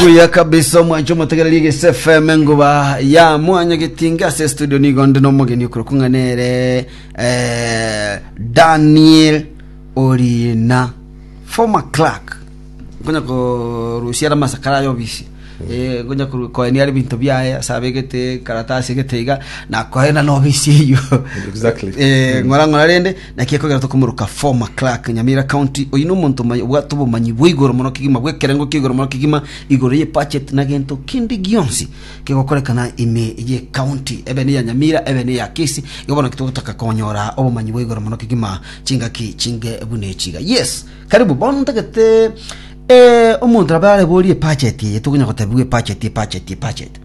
Buya kabisa omwancho motegererie gese FM nguba ya mwanya gitinga ase studio nigo ndi nomogeni okoro kung'anere eh, Daniel Orina former clerk ngonya korusia ara masakara ayo bisi eh ngonya koru- koenia ari binto biaye ase abegete karatasi egete iga nakoena nobisi eyo Exactly. eh ng'ora ng'ora rende Naki ekogera tokomoroka Former Clerk, Nyamira County, oyio nomonto omoya obwate obomanyi bwa igoro mono kegima, bw'ekerengo kia igoro mono kegima, igoro ye budget na gento kende gionsi kegokorekana ime ye county, ebe neya Nyamira, ebe neya Kisii, igo bono naki togotaka konyora obomanyi bwa igoro mono kegima, chingaki chinge buna echi iga. Yes, karibu, bono ntagete eh, omonto nabo areborie ebudget eye, tokonya gotebiwa ebudget, ebudget, ebudget.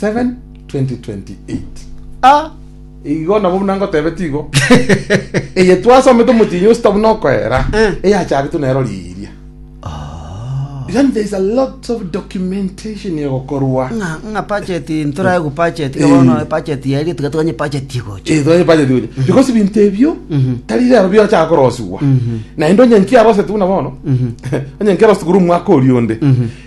7:2028 Ah, igo nabo buna ngotebetie igo eye twasomete omotinyi osita buna okoera Eh. eyacharetwe nero riiria yani there is a lot of documentation egokorwa ng'a ng'a budget ntorae ku budget Eh. bono budget yairi tiga tuganye budget igocha Eh, twaye budget gocha because ebinto ebio Mhm. tari rero biochaka korosigwa Mhm. naende onye nkiarosetwe buna bono Mhm. onye nkiarosetwe korwa omwaka oria onde Mhm.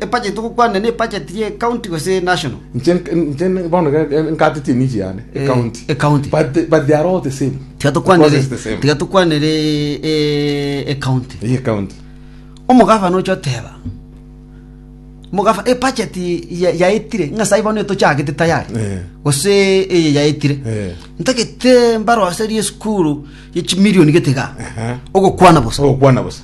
Ebudget togokwanera ne ebudget ye county gose national. Inche inche bono nkate chinich yane e county. E county. But but they are all the same. Tiga tokwanere. Because it's the same. Tiga tokwanere e e county. Ye county. Omogavana ocha oteba. Mogafa e budget ya yaitire ngasa ibono tochagete tayari. Eh. Gose eye yaitire. Eh. Ntagete mbaro aseri school ye chimilioni getiga. Aha. Ogokwana bosa. Ogokwana bosa.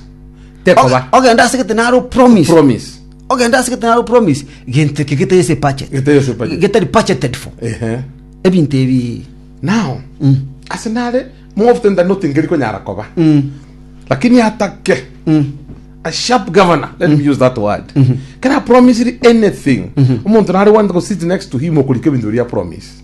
Tekoba. Oge- ogenda ase gete naro promise Promise. ogenda ase gete naro promise gento eke getari ase budget Getari ase budget. getari budgeted for Ehe. ebinto ebi Now, ase nare more often than not ngeri konyara koba. Lakini atake a sharp governor, let me use that word. Kera promisiri anything. Omonto nare wante go sit next to him okorika ebinto biria promise.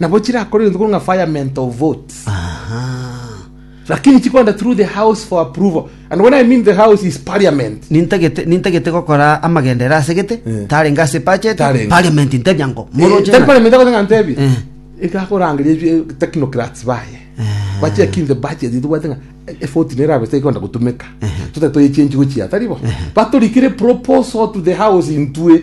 Nabo chirakore egento korwa ng'a firement of votes. Lakini chikorenta through the house for approval. And when I mean the house is parliament. nintagete nintagete gokora amagendere ase gete Eh. tarenge ase budget Tarenge. parliament ntebia ngo Eh, moroche tari na- parliament akote ng'a ntebie. Eh. Ekakorangeria ebi- technocrats baye. Bachek in the budget itobwate ng'a e vote nere abesa ikonda gotumeka. Totari toyechange gochia tari bo. Batorikire proposal to the house intwe.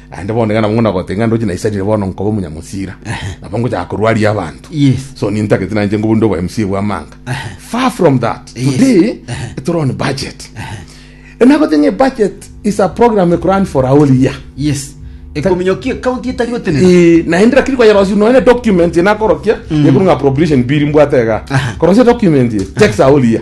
Naende bono iga nabwo ng'una gotenga ng'a ndoche naisanire bono nkobe omonyamusira. Nabo ngochaka korwaria abanto. Yes. So nintagete nainche ngobe onde obo MC bw'amanga. Far from that. Yes. Today tore on budget. Enagote ng'a budget is a program ekurun for a whole year. Yes. Ekominyoki ekaunti etari gotenena. Eh, naende lakini kwayerosia nonya ne document enakorokia yekorwa ng'a appropriation bill mbwate iga. Aha. Korosia document ye, checks a whole year.